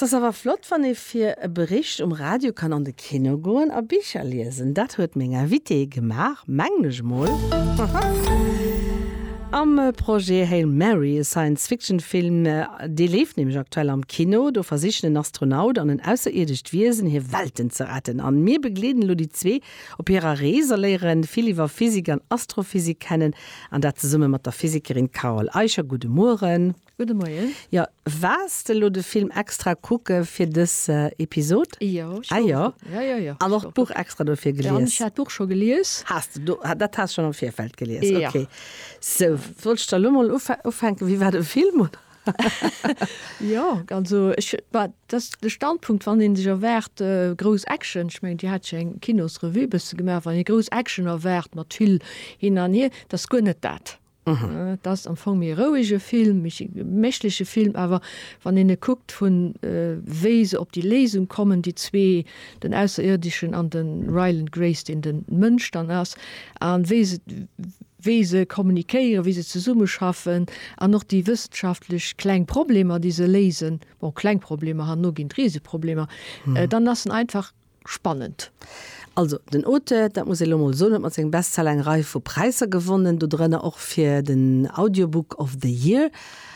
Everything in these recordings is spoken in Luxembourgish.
't ass awer flott, wann ee fir e Bericht um Radio kann an de Kino goen a Bicher liesen. Dat huet meng Invitée gemaach, mengen ech mol, am Projet Hail Mary, e Science-Fiction-Film. Dee leeft nämlech aktuell am Kino. Do versichen en Astronaut an en ausserierdescht Wiesen, hir Welten ze retten. A mir begleeden elo déi zwee op hirer Rees a léiere vill iwwer Physik an Astrophysik kennen, an dat zesumme mat der Physikerin Carole Eicher. Gudde Mueren. Gudde Moien. Jo, waars de lo de Film extra kucke fir dës Episod? Jo, ech war jo. Ah jo. Jo, jo. An och d'Buch extra dofir gelies? Jo, ech hat d'Buch scho gelies. Has de do, dat has schonn am Virfeld gelies? Jo. Okay. Sou, wollt ech da lo mol ufänken, wéi war de Film, oder? Jo, also ech, war dass de Standpunkt, wann ee sech erwaart grouss Action, ech mengen Dir hat jo eng Kinosrevue e bësse gemaach, wann ee grouss Action erwaart mat vill hin an hier, dat ass guer net dat. Et ass am Fong méi e rouege Film, méi e geméchleche Film, awer wann een e kuckt vun wéi se op déi Léisung kommen, déi zwee, den Ausserierdeschen an de Ryland Grace, deen de Mënsch dann ass, a wéi se wéi se kommunikéieren, wéi se zesummeschaffen an och déi wëssenschaftlech kleng Problemer, déi se léisen, bon, kleng Problemer, herno ginn et Riseproblemer, dann ass en einfach. Spannend. Also den Auteur, dat muss ee lo mol soen, huet mat sengem Bestseller eng Rei vu Präisser gewonnen, dodrënner och fir den Audiobook of the Year.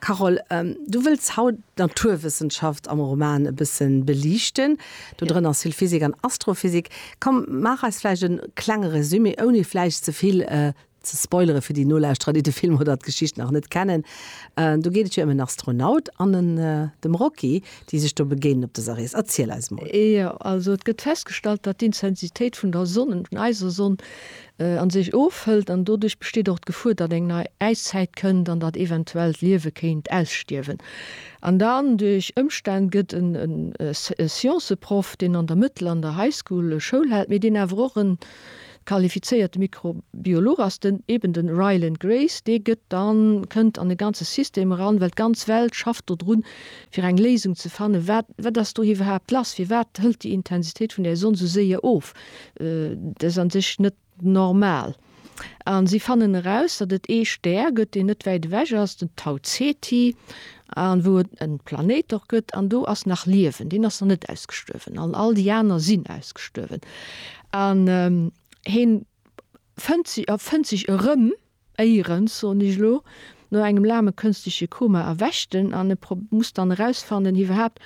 Carole, du wëlls haut d'Naturwëssenschaft am Roman e bësse beliichten, dodrënner Asylphysik an Astrophysik. Komm, maach eis vläicht e klenge Resumé, ouni vläicht ze vill ze spoilere fir déi Nolauschterer, déi de Film oder d'Geschicht nach net kennen, do geet et jo ëm en Astronaut an en dem Rocky, déi sech do begéinen op dëser Rees. Erziel eis mol. Jo, also et gëtt festgestallt, datt d'Intensitéit vun der Sonn, vun eiser Sonn, a sech ofhëlt an doduerch besteet och d'Gefuer, datt eng nei Äiszäit kënnt an datt eventuell d'Liewe kéint ausstierwen. An dann duerch Ëmstänn gëtt en e Scienceproff, deen an der Mëttel an der High School Schoul hält, mee deen awer och en Qualifizéierte Mikrobiolog ass den eben den Ryland Grace, dee gëtt dann, kënnt an e ganze System eran, well d'ganz Welt schafft do drun fir eng Léisung ze fannen, wat wat ass do iwwerhaapt lass, firwat hëlt déi Intensitéit vun der Sonn esou séier of, dat ass an sech net normal. A si fannen eraus, datt et ee Stär gëtt, deen net wäit ewech ass, den Tau Ceti, an wou et en Planéit och gëtt an do ass nach Liewen, deen ass nach net ausgestuerwen an all déi aner sinn ausgestuerwen an heen fënnt si a fënnt sech erëm éierens, soen ech elo, no engem laange kënstleche Koma erwächt en an e muss dann erausfannen iwwerhaapt,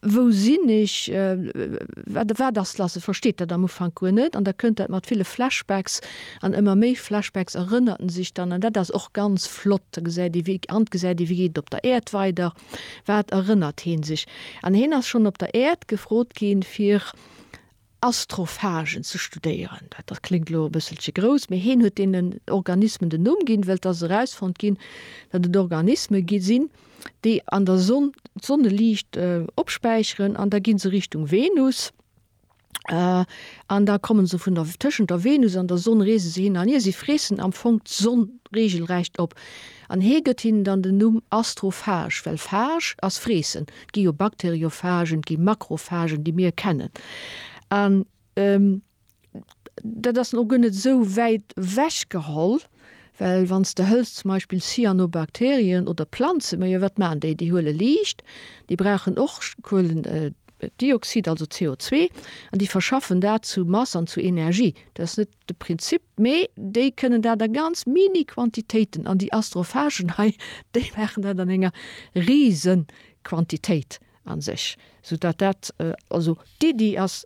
Wou sinn ech? Wat wat ass lass? E versteet dat am Ufank guer net an da kënnt dat mat ville Flashbacks an ëmmer méi Flashbacks erënnert en sech dann an dat ass och ganz flott. Da gesäit ee wéi an gesäit ee wéi geet et op der Äerd weider, wat erënnert hee sech an heen ass schonn op der Äerd gefrot ginn fir, Astrophagen ze studéieren. Dat kléngt elo e bësselche grouss, mee hien huet deenen Organismen den Numm ginn, wëll et ass erausfonnt ginn, datt et Organisme gi sinn, déi an der Sonn d'Sonneliicht opspäicheren an da gi se Richtung Venus an da komme se vun der, tëschent der Venus an der Sonn reese se hin an hier. Si freessen am Fong d'Sonn reegelrecht op. An hee gëtt hinnen dann den Numm Astrophage, well phage ass freessen. Et gi jo Bakteriophagen, et gi Makrophagen, déi mir kennen. An dat ass dann och guer net esou wäit ewech geholl, well wann s de hëls zum Beispill Cyanobakterien oder Planzen, ma jo wat maachen déi? Déi huele Liicht, déi brauchen och Kuelendioxid, also CO2, an déi verschaffen dat zu Mass an zu Energie. Dat ass net de Prinzip, mee déi kënnen dat a ganz mini Quantitéiten an déi Astrophagen hei, déi maachen dat an enger rise Quantitéit a sech, soudatt dat, also d'Iddi ass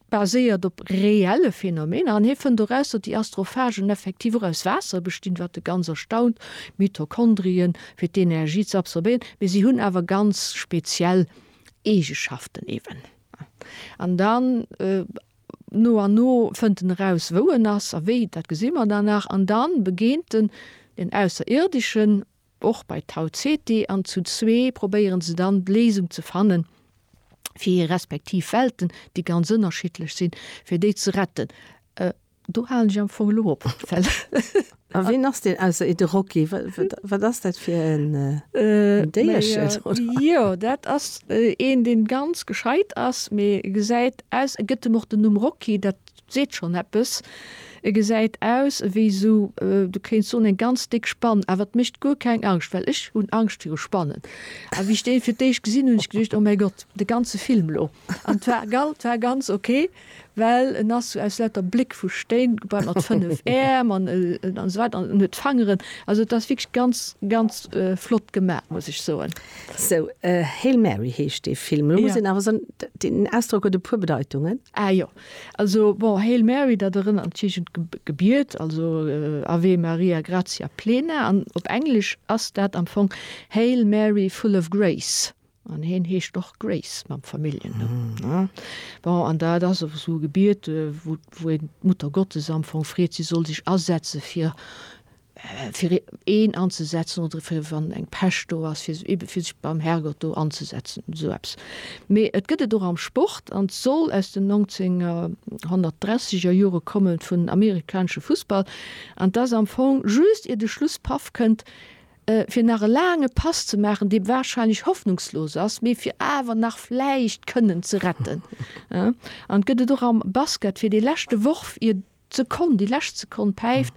baséiert op reelle Phänomener an hie fënnt eraus, datt déi Astrophagen effektiv och aus Waasser bestinn, wat e ganz erstaunt, Mitochondrien, fir d'Energie ze absorbéieren, mee si hunn awer ganz speziell Eegeschaften eeben. An dann. No an no fënnt en eraus, wou en ass a wéi, dat gesi mer dann nach, an da begéint en den Ausserierdischen, och bei Tau Ceti, an zu zwee probéieren se dann d'Léisung ze fanne fir hir respektiv Welten, déi ganz ënnerschiddlech sinn, fir déi ze retten. Do halen ech am Fong elo op. A ween ass deen ausser ee de Rocky? Wat ass dat fir en Déierchen? Jo, dat ass een, dee ganz gescheit ass, mee e gesäit aus, e gëtt em och den Numm Rocky, dat seet schonn eppes, e gesäit aus ewéi esou, du kéints soen, eng ganz déck Spann, awer et mécht guer keng Angscht, well ech hunn Angscht viru Spannen. A wéi ech dee fir d'éischt gesinn hunn, hu ech geduecht, oh mäi Gott, de ganze Film lo! An 't war ganz ok. well en ass sou aus lauter Bléck vu Stéin gebaut mat 5 Äerm an esou weider an en huet Fangeren, also et ass wierklech ganz, ganz flott gemat, muss ech soen. Sou, Hail Mary heescht dee Film. Elo muss een awer soen, deen Ausdrock huet e puer Bedeitungen. Ah jo, also bon, Hail Mary, dat erënnert natierlech un d'Gebiet, also Ave Maria gratia plena, an op Englesch ass dat am Fong Hail Mary full of grace. An heen heescht och Grace mam Familljennumm. Bon, an dat ass och esou e Gebiet, wou een d'Muttergottes am Fong freet, si soll sech asetze fir fir een anzesetzen oder fir wann eng Pescht do ass, fir ebe fir sech beim Herrgott do anzesetzen, esou eppes. Mee et gëtt et och am Sport an soll aus den 1930 er Jore kommen, vun amerikanesche Fussball. An 't ass am Fong just ier de Schlusspaf kënnt, fir nach e laange Pass ze maachen, dee warscheinlech hoffnungslos ass, mee fir awer nach vläicht kënnen ze retten. An et gëtt et och am Basket, fir dee leschte Worf, ier d'Sekonn, déi lescht Sekonn päift,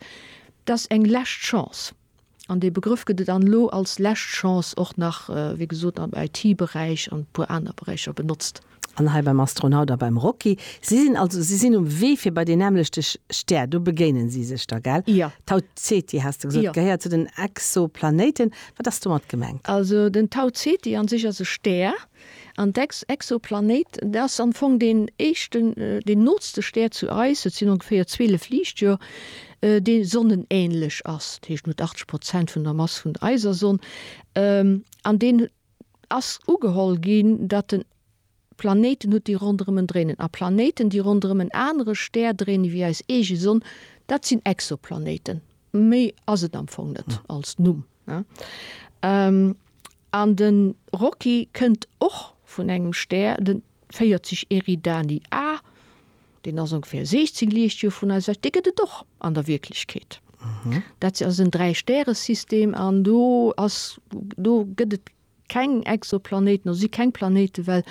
dat ass eng lescht Chance. An dee Begrëff gëtt et an elo als lescht Chance och nach, wéi gesot, am IT-Beräich an e puer aner Beräicher benotzt. An hei beim Astronaut a beim Rocky. Si sinn also, si sinn um Wee fir bei deen nämmlechte Stär. Do begéinen si sech da, gell? Jo. Tau Ceti has de gesot. Jo. Gehéiert zu den Exoplanéiten. Wat ass domat gemengt? Also den Tau Ceti an sech ass e Stär. An d'Exoplanéit, dat ass am Fong deen éischten, deen nootste Stär zu eis, et sinn ongeféier 12 Liichtjoer, dee sonnenähnlech ass. Dat heescht, en huet 80 Prozent vun der Mass vun eiser Sonn. An deen huet. ass ugeholl ginn, datt den Planéiten hutt, déi ronderëm en dréinen. A Planéiten, déi ronderëm en anere Stär dréinen, ewéi eis eege Sonn, dat sinn Exoplanéiten. Méi ass et am Fong net als Numm. An de Rocky kënnt och vun engem Stär, de 40 Eridani A. Deen ass ongeféier 16 Liichtjoer vun eis ewech. Dee gëtt et och an der Wierklechkeet. Dat ass en Dräistäresystem an do ass, do gëtt et keng Exoplanéiten, do si keng Planéiten, well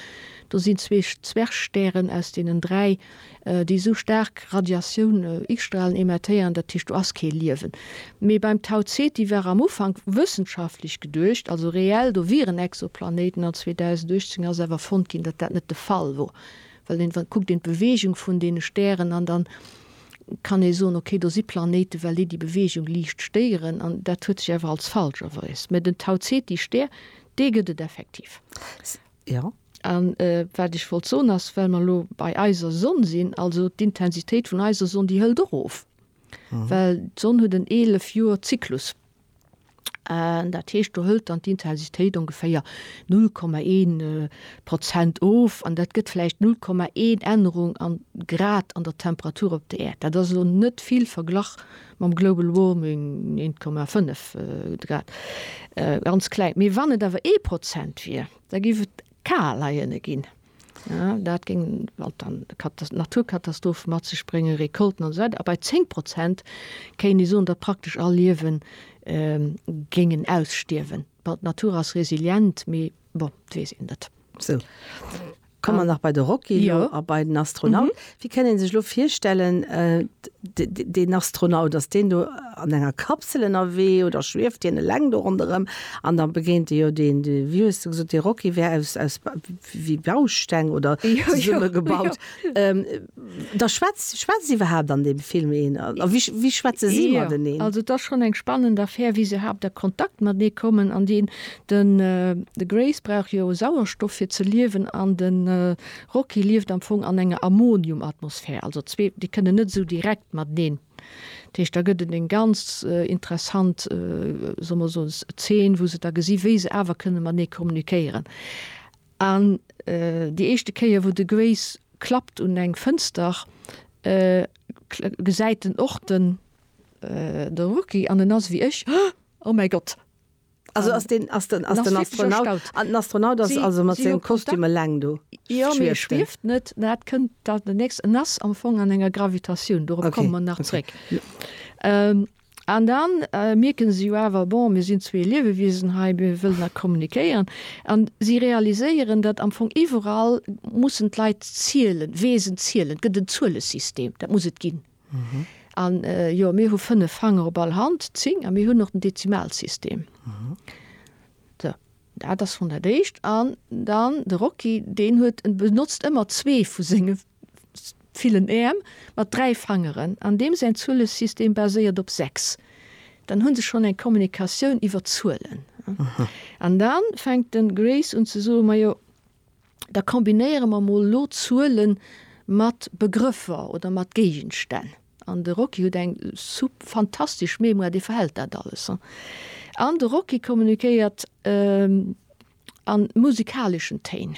do sinn zwee Zwergstären, aus deenen dräi, déi esou staark Radiatioun, X-Stralen emettéieren. Dat heescht, do ass kee Liewen. Mee beim Tau Ceti war am Ufank wëssenschaftlech geduecht, also reell, do wieren Exoplanéiten. An 2018 ass awer fonnt ginn, datt dat net de Fall wor. Well een dann kuckt een d'Beweegung vun deene Stären an dann kann ee soen, okay, do si Planéiten, well déi déi Beweegung liicht stéieren. An dat huet sech awer als falsch erweis. Mä den Tau Ceti Stär, dee gëtt et effektiv. Jo. A wat ech wollt soen ass, well mer elo bei eiser Sonn sinn, also d'Intensitéit vun eiser Sonn, déi hëlt och of, well d'Sonn huet en 11 Joer Zyklus. An dat heescht, do hëlt dann d'Intensitéit ongeféier 0,1 Prozent of an dat gëtt vläicht 0,1 Ännerung an Grad an der Temperatur op der Äerd. Dat ass elo net vill verglach mam Global Warming, 1,5 Grad, ganz kleng. Mee wann et awer ee Prozent wier, da géif et kaler hierne ginn. Dat géing dann Naturkatastrophe mat sech bréngen, Recolten an esou weider. A bei 10 Prozent kéint ee soen, datt praktesch all Liewe géingen ausstierwen. Bon, d'Natur ass resilient, mee bon, et weess een net. Sou, komme mer nach bei de Rocky elo a bei den Astronaut. Wie kënnt een sech lo virstellen, deen Astronaut, dass deen do an enger Kapsel ënnerwee oder schwieft hien eleng do ronderëm an da begéint e jo deen, wéi hues de gesot, dee Rocky wär aus aus wéi Bausteng oder zesumme gebaut. Da schwätzt schwätzt iwwerhaapt an deem Film een a wéi wéi schwätze si mateneen? Jo, also et ass schonn eng spannend Affär, wéi se iwwerhaapt a Kontakt matenee kommen an deen, den de Grace brauch jo Sauerstoff fir ze liewen an de. Rocky lieft am Fong an enger Ammoniumatmosphär, also zwee déi kënnen net esou direkt mateneen. Dat heescht da gëtt et eng ganz interessant, solle mer soen, Zeen, wou se da gesi wéi se awer kënne matenee kommunikéieren. An déi éischte Kéier wou de Grace klappt un eng Fënster, gesäit en och de Rocky an en ass ewéi ech, Oh mäi Gott! Also ass den ass den ass den Astronaut an den Astronaut ass also mat sengem Kostüm eleng do? Jo, mee e schwieft net, dat kënnt dann den nächsten. En ass am Fong an enger Gravitatioun, dorop komme mer nach zréck. An da mierke se jo awer, bon, mir sinn zwee Liewewiesen hei, mir wëllen da kommunikéieren. An si realiséieren, datt am Fong iwwerall mussen d'Leit zielen, Weesen zielen, et gëtt en Zuelesystem, dat muss et ginn. An jo, mir hu fënnef Fanger op all Hand, zéng, a mir hunn och den Dezimalsystem. Sou, dat ass schonn dat Éischt. An dann de Rocky, deen huet, en benotzt ëmmer zwee vu senge villen Äerm mat dräi Fangeren, an deem säin Zuelesystem baséiert op sechs. Dann hu se schonn eng Kommunikatioun iwwer Zuelen. An da fänkt de Grace un ze soen, Majo. da kombinéiere mer mol elo Zuele mat Begrëffer oder mat Géigenstänn. An de Rocky huet eng sup fantastesch Mémoire, dee verhält dat alles. An de Rocky kommunikéiert a musikaleschen Téin.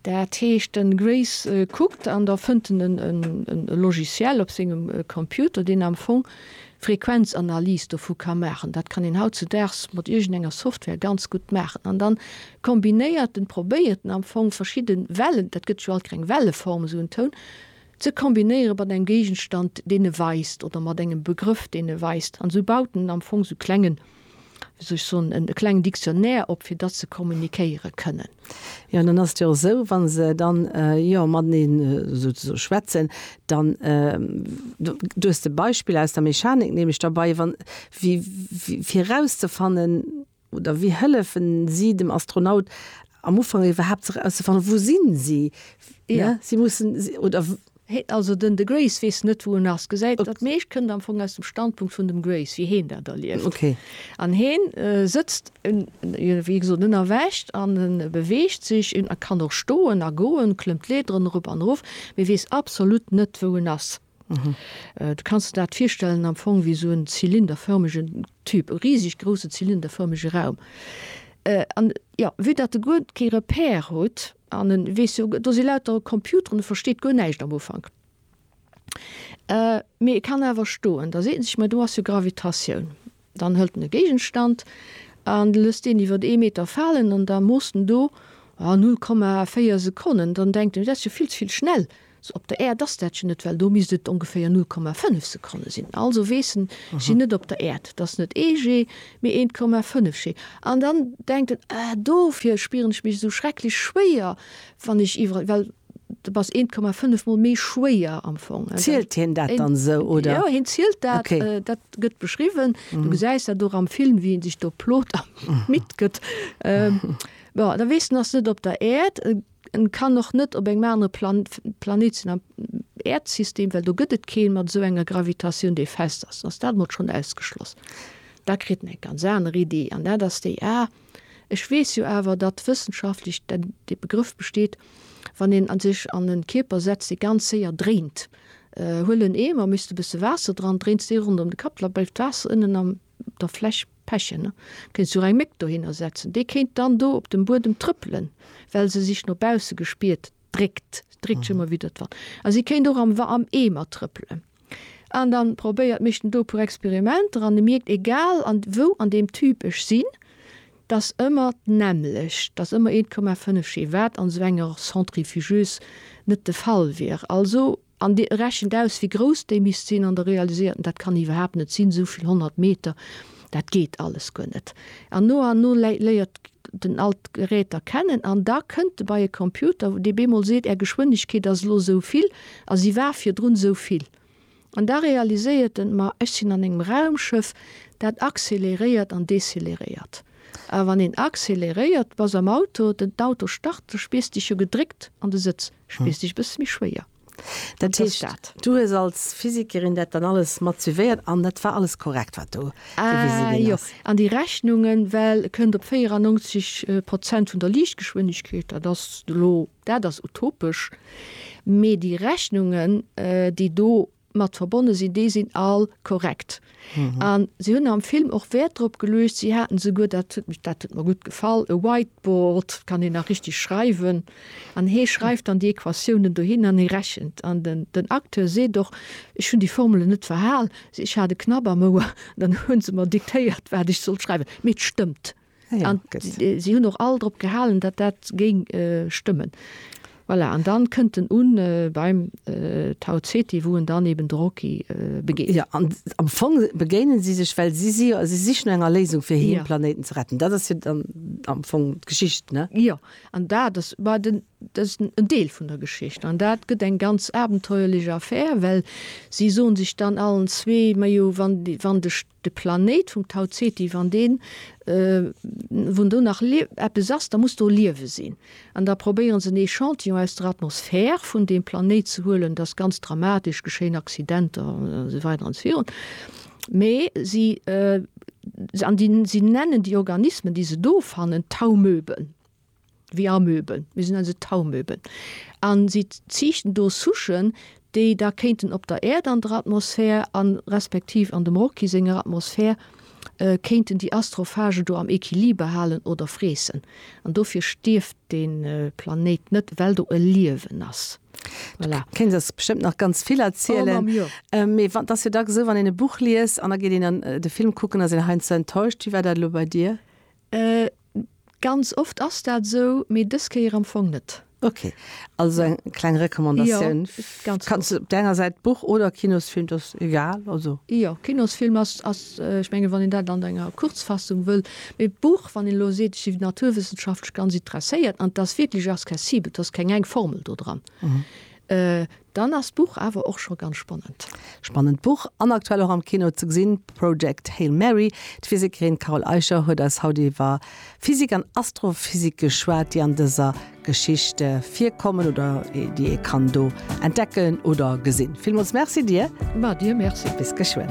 Dat heescht, den Grace kuckt an da fënnt en e Logiciel op sengem Computer, deen am Fong Frequenzanalyse dovu ka maachen. Dat kann een hautzudaags mat iergendenger Software ganz gutt maachen. An dann kombinéiert en, probéiert en am Fong verschidde Wellen, dat gëtt jo alt keng Welleform, esou en Toun ze kombinéiere mat engem Géigenstand, deen e weist, oder mat engem Begrëff, deen e weist. An esou baut en am Fong esou klengen wéi soll ech soen, e klengen Dictionnaire op, fir datt se kommunikéiere kënnen. Jo, dann ass et jo esou, wa se dann, jo, mateneen souzesoe schwätzen, dann, du hues de Beispill aus der Mechanik, nehme ech derbei, wa, wéi, wéi, fir erauszefannen oder wéi hëllefen si dem Astronaut am Ufank iwwerhaapt ze erauszefannen, wou sinn si, ne? Si mussen, oder. Hee, also den de Grace weess net wou en ass. Gesäit, dat meescht kënnt am Fong aus dem Standpunkt vun dem Grace, wéi heen dat erlieft. An heen sëtzt, wéi gesot, en erwächt an en beweegt sech, en kann och stoen a goen, klëmmt d'Leederen erop an erof, mee weess absolut net wou en ass. Du kanns de dat virstellen am Fong wéi esou en zylinderförmegen Tube, e riseg grousse zylinderförmege Raum. An, jo, vue dat e guer kee Repère huet, An en weess jo, do si lauter Computeren, e versteet guer näischt am Ufank. Mee e kann awer stoen. Da seet en sech, Ma do ass jo Gravitatioun. Dann hëlt en e Géigenstand an lësst deen iwwer ee Meter falen an da moosst en do, oh, 0,4 Sekonnen. Dann denkt en, Dat ass jo vill ze vill schnell. Sou op der Äerd ass dat jo net, well do misst et ongeféier 0,5 Sekonne sinn. Also weess en, ech sinn net op der Äerd, et ass net ee G, mee 1,5 G. An dann denkt en, Ah, dofir spieren ech mech esou schrecklech schwéier, wann ech iwwerall, well de bass 1,5 mol méi schwéier am Fong. Zielt hien dat dann esou, oder? Jo, hien zielt dat. Dat gëtt beschriwwen. Du gesäis dat och am Film, wéi en sech do plot a midd gëtt. Bon, da weess en, ass net op der Äerd. En kann och net op engem anere Planet sinn am Äerdsystem, well do gëtt et keen mat esou enger Gravitatioun, déi fest ass. Ass dat mol schonn ausgeschloss. Da kritt en eng ganz aner Iddi an dat ass déi, ah, ech weess jo awer, datt wëssenschaftlech dat dee Begrëff besteet, wann een a sech an e Kierper setzt, dee ganz séier dréint. Huel en Eemer, misst e bësse Waasser dran, dréins dee ronderëm de Kapp, da bleift d'Waasser ënnen am. der Fläch pechen, ne? Kéints du och eng Méck dohinner setzen, déi kéint dann do op dem Buedem trëppelen, well se sech no bausse gespiert dréckt, se dréckt sech ëmmer widder d'Wand. A si kéint och am Wa, am Eemer trëppelen. An dann probéiert, mécht en do e puer Experimenter an e mierkt, egal an wou an deem Tube ech sinn, dass ëmmer d'nämmlecht, dass ëmmer 1,5 G, wat an esou enger Centrifugeuse net de Fall wier. Also. An Dir rechent aus, wéi grouss déi misst sinn an der realiséierten, dat kann iwwerhaapt net sinn, esou vill honnert Meter, dat geet alles guer net. An no an no léiert den all d'Geräter kennen an da kënnt e bei e Computer, dee bemol seet, Är Geschwënnegkeet ass elo esou vill a si war virdrun esou vill. An da realiséiert en, Ma ech sinn an engem Raumschëff, dat accéléréiert an décéléréiert. A wann een accéléréiert, bass am Auto, den d'Auto start, da spiers Dech jo gedréckt an de Sëtz. spierst dech e bësse méi schwéier. Dat heescht, du hues als Physikerin dat dann alles mat suivéiert an dat war alles korrekt, wat do gewise ginn ass? Jo, an déi Rechnunge well kënnt op 94 Prozent vun der Liichtgeschwindegkeet. Dat ass elo, dat ass utopesch, mee déi Rechnungen, déi do mat verbonne sinn, déi sinn all korrekt. A si hunn am Film och Wäert drop geluecht, si haten esouguer, dat huet mech, dat huet mer gutt gefall, e Whiteboard, kann een nach richteg schreiwen, an hee schreift dann déi Equatiounen dohin an hie rechent. An den Acteur seet och, Ech hunn déi Formelen net verhal, ech hat e Knapp am Ouer, an dann hu se mer diktéiert, wat ech sollt schreiwen, mee et stëmmt. Ja, si hunn och all drop gehalen, datt dat géing stëmmen. Voilà, an dann kënnt en un beim Tau Ceti, wou en dann eben de Rocky begéint. Ja, an am Fong begéinen si sech, well si si jo, si sichen no enger Léisung fir hir Planéiten ze retten. Dat ass jo dann am Fong d'Geschicht, ne? Jo, an dat ass bah den, dat ass en Deel vun der Geschicht. An dat gëtt eng ganz abenteuerlech Affär, well si soen sech dann allen zwee, Majo, wann, wann de. De Planéit vum Tau Ceti, wann deen, wou do nach eppes ass, da muss do Liewe sinn. An da probéiere se en Echantillon aus der Atmosphär vun deem Planéit ze huelen, dass ganz dramatesch geschéien Accidenter an esou weider an esou virun. Mee si, an déi, si nennen déi Organismen, déi se do fannen, Taumöben. wéi Amöben, mir sinn also Taumöben, a si ziichten do Souchen, déi da kéinten op der Äerd an der Atmosphär a respektiv an dem Rocky senger Atmosphär kéinten déi Astrophage do am Equiliber halen oder freessen. An dofir stierft dee Planéit net, well do e Liewen ass. Voilà. Du kéins eis bestëmmt nach ganz vill erzielen. Oh, Mamm, jo. Mee et ass jo dacks esou, wann een e Buch liest an da geet een an de Film kucken, ass een heiansdo enttäuscht. Wéi war dat elo bei dir? Ganz oft ass dat esou, mee dës Kéier am Fong net. Ok, also eng kleng Recommandatioun. Kanns de op där enger Säit Buch oder Kinosfilm, dat ass egal? Jo, Kinosfilm ass, ech mengen, wann een dat an enger Kurzfassung wëll. Mee Buch, wann een elo seet, ech si naturwëssenschaftlech ganz interesséiert an et ass wierklech accessibel, et ass keng eng Formel do dran, Dann ass d'Buch awer och scho ganz spannend. Spannend Buch an aktuell och am Kino ze gesinn, Project Hail Mary. D'Physikerin Carol Eicher huet eis haut iwwer Physik an Astrophysik geschwat, déi an dëser Geschicht virkommen oder déi ee kann do entdecken oder gesinn. Villmools Merci dir. Mä dir Merci. Bis geschwënn.